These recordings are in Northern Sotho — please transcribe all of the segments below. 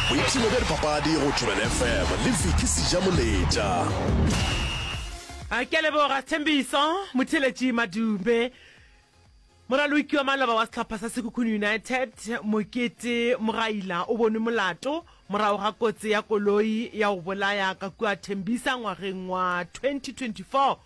boipshino bja dipapadi go thobela fm le viki sejamoletša a ke leboga thembiso motheletši madume moraloki wa maloba wa sehlopha sa sekhukhune united mokete mogaila o bonwe molato morago ga kotsi ya koloi ya go bolaya ka kua thembisa ngwageng wa 2024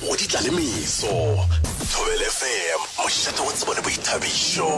Go di tla le meso. Thobel FM, mošate wa tsebo le boithabišo.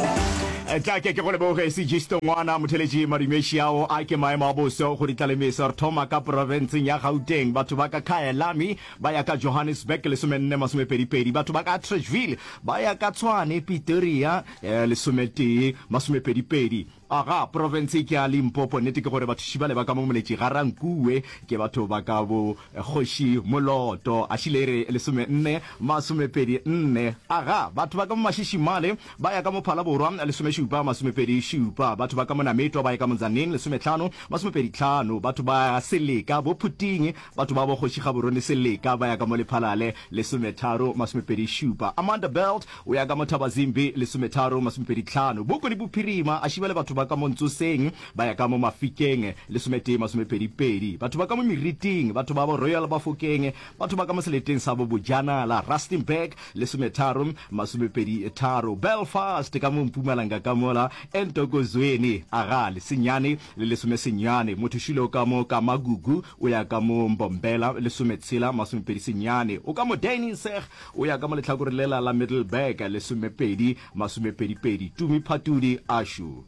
Tla ke ke go leboge Segisto Ngwana motheletši madumeši ao a ke maemo a boso go ditlalemeso re thoma ka porofenseng ya Gauteng batho ba ka Khaelami ba ya ka Johannesburg lesomenne masomepedipedi batho ba ka Atteridgeville ba ya ka Tshwane Pitoria eh, lesometee masomepedipedi Aga, profense ke ya Limpopo. Nnete ke gore bathuši bale ba ka mo moletši Ga-Rankuwe ke batho ba ka bo Kgoši Moloto, Ašilere lesome nne masomepedi nne. Aga, batho ba ka mo Mašishimale ba ya ka mo Phalaborwa lesome šupa masomepedi šupa. Batho ba ka mo Nametwa ba ya ka mo Tzaneen lesome tlhano masomepedi tlhano. Batho ba Seleka bo Phuting, batho ba bo Kgoši Gaborone Seleka ba ya ka mo Lephalale lesome tharo masomepedi šupa. Amanda Belt, Go ya ka Mothabazimbi, lesometharo, masomepedi tlhano, Boko le Bophirima a šiba le batho ba ka mo Ntsoseng ba ya ka mo Mafikeng, lesometee, masomepedi pedi, batho ba ka mo Meriting, batho babo Royal Bafokeng, batho ba ka mo seleteng sa bo Bojanala, Rustenburg, lesometharo, masomepedi tharo, Belfast ka mo Mpumalanga ka mola, Entokozweni, Agali, senyane, le lesomesenyane, Mothoshilo ka mo Kamagugu o ya ka mo Mbombela, lesometshela, masomepedi senyane, o ka mo Deiningseg, Go ya ka mo lehlakore lela la Middelburg, lesomepedi, masomepedipedi, Tumi Phatudi, Ashu.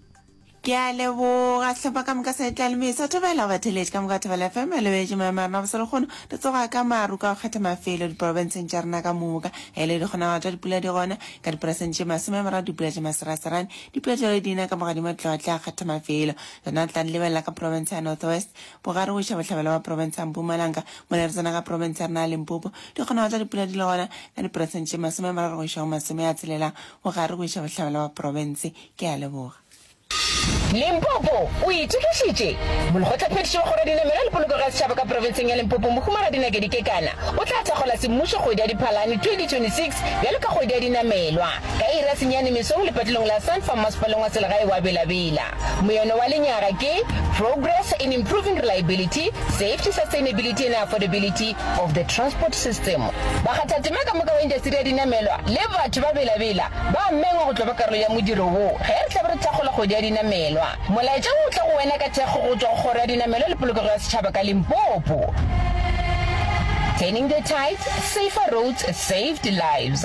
Ke a leboga Hlapa ka moka sa etla le me sa thobela go batheletši ka moka Thobela FM e lebetše maemo a rena go selekgono re tsoga ka maru ka go kgetha mafelo diporobenseng tša rena ka moka ge e le dikgonagalo tša dipula di gona ka diperesente tše masome a mararo dipula tše maseraserane dipula tšeo di na ka mogadima tlotla a kgetha mafelo rena re tla di lebelela ka porobentse ya North West bogare go iša bohlabela ba porobentse ya Mpumalanga mola re tsena ka porobentse ya rena ya Limpopo Dikgonago tša dipula di le gona ka diperesente tše masome a mararo go iša go masome a tshelela bogare go iša bohlabela wa profense. Ke a leboga. Limpopo o itokišitše. Molekgotlaphethiši wa Kgoro ya Dinamelwa le Polokego ya Setšhaba ka Profenseng ya Limpopo Mohumagadi Nakedi Kekana o tla thakgola semmušo kgwedi ya Diphalane 2026 bjalo ka kgwedi ya dinamelwa ka iri ya senyane mesong lepatilong la Sunfarm Masepaleng wa Selegae wa Bela Bela. Moyeno wa lenyaga ke Progress in improving reliability, safety, sustainability and affordability of the transport system, bakgathatema ka moka wa intasteri ya dinamelwa le batho ba belabela ba amengwa go tlo ba karolo ya modiro wo ge re tla be re thakgola kgwedi ya dinamelwa. Molaetša wo o tla go wena ka thekgo go tšwa go Kgoro ya Dinamelwa le Polokego ya Setšhaba ka Limpopo. Turning the Tides, Safer Roads, Saved Lives.